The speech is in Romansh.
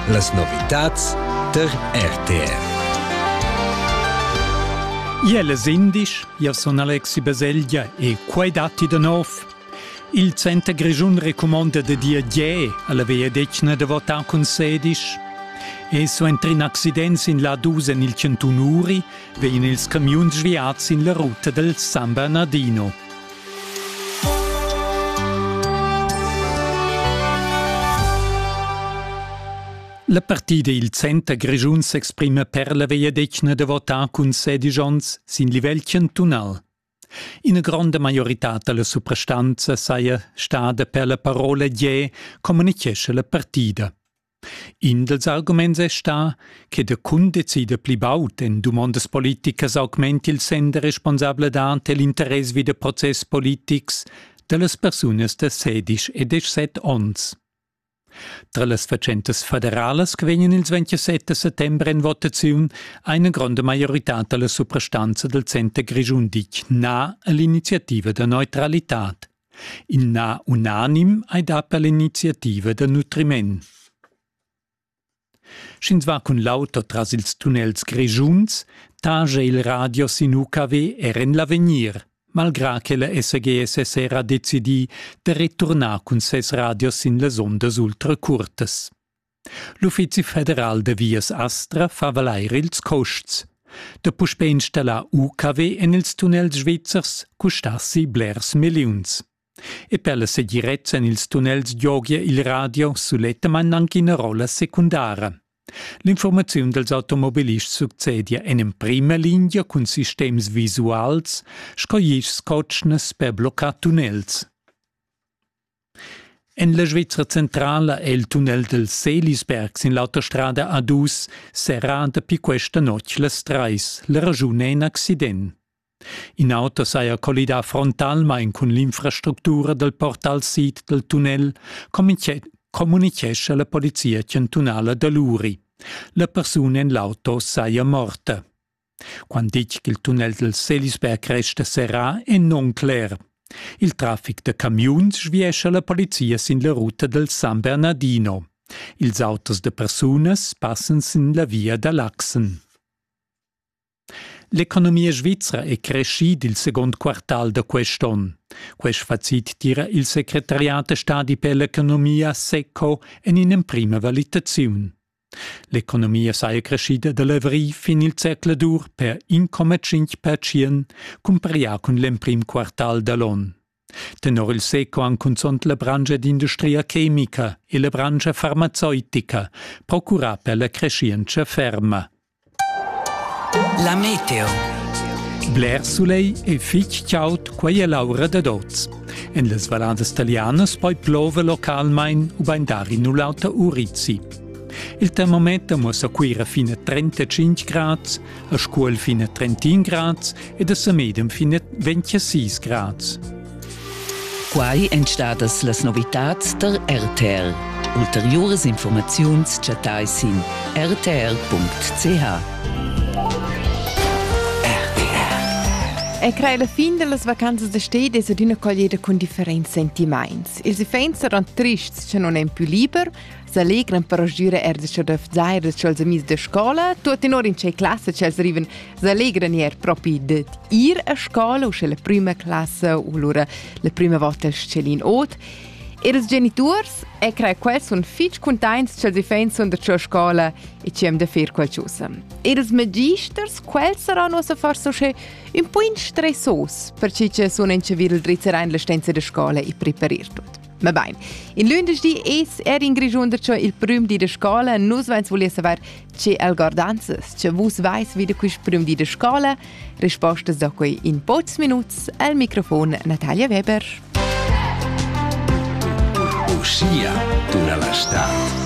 Las novitads der RTR. Iel es indisch, io sun Alexi Baselgia e quai datti da nov. Il Center Grischun recumonda da dir Gè alla vegliadetgna da votar cun sedisch. E suenter in accident sin la dus en il 101 uri vegnan ils camiuns sviads sin la ruta del San Bernardino. La partida il Center Grischun s'exprima per la vegliadetgna da votar cun sedisch onns sin livel chantunal. Ina gronda maiorità da la suprastanza saja stada per la parola Gie, communitgescha la partida. In dals arguments è stà che der Kunde decida pli baud. En dumondas politicas augmenti il sender responsabladad e l'interess vi da process politics da las persunas da sedisch e dezessett onns. Tra las fatschentas federalas che vegnan ils 27 da settembre en votaziun ha ina gronda maioritad da la suprastanza dal center Grischun ditg na all'iniziativa da neutralitad. In na unanim ei dat per l'iniziativa da nutriment. Sch'ins va cun l'auto tras ils tunnels grischuns, tagia il radio sin UKW er en l'avegnir, malgrà che la SGS es era decidì da returnar cun ses radios sin las ondas ultra curtas. L'Uffizi federal da vias Astra fa valair ils custs. Da puspè installar UKW en ils tunnels svizzers custassi blers milliuns. E per la segirezza en ils tunnels giogia il radio sulettamain anche ina rolla secundara. L'informaziun dals automobilists succedia en emprima linea cun sistems visuals sco ischs cotschnas per bloccar tunnels. En la Svizra centrala è il tunnel del Selisberg sin l'autostrada A2 serrà dapi questa notg las trais. La raschun è in accident. In auto saja collidà frontalmain cun l'infrastructura dal portal sid dal tunnel, communichescha la polizia chantunala da l'Uri. La persuna en l'auto saja morta. Quant ditg ch'il tunnel dal Selisberg resta serrà è non cler. Il traffic da camiuns sviescha la polizia sin la ruta dal San Bernardino. Ils autos da persunas passan sin la via da Laxen. L'economia svizra è crescida il second quartal da quest'onn. Quest facit tira il secretariat da stadi per l'economia SECO en in'emprima valitaziun. L'economia saja creschida da l'avrigl fin il zercladur per 1,5 pertschient cumparià cun l'emprim quartal da l'onn. Tenor il SECO han cunzunt la branscha d'industria chemica e la branscha farmazeutica procurà per la creschientscha ferma. La meteo. Bler sulegl e fitg chaud, quei è l'aura dad oz. En las valladas italianas poi plova localmain ubain dar in u l'auter urizi. Il termometer muossa Cuira fin a 35 grads, a Scuol fin a 31 grads e da sa medem finet ventia sis grads. Quai èn stadas las novitads tar RTL. Ulteriuras informaziuns chattai sin rtl.ch. E crai la fin dellas vacanzas da stedi es adüna collieda cun differents sentimaints. Ils iffaints saran trists, cha non èn pü liber, s'allegran per giura er da chadöf zair da ch'els amis de scola, tuot in or in che classa ch'els arriven s'allegran er propi dad ir a scola, u sche la prima classa u lura la prima volta il schelin ot. Ir als geniturs e crea quels sun fitg containts ch'els iffain sun da cia scola e ci hem da fer qualchosa. Ir als magisters, quels saran uossa forse usche un po in stressos, perciò che sun in chavir il drizzerain la stenza de scola e preparir tut. Mabain. In lündeschdi es er in Grischun darcho il prüm di da scola. Nus vains vulì saver che el guardanzas, che vus vais vi da quist prüm di da scola. Rispostas da quei in pocs minuts al microfon Natalia Weber. Uschia tuna la stad.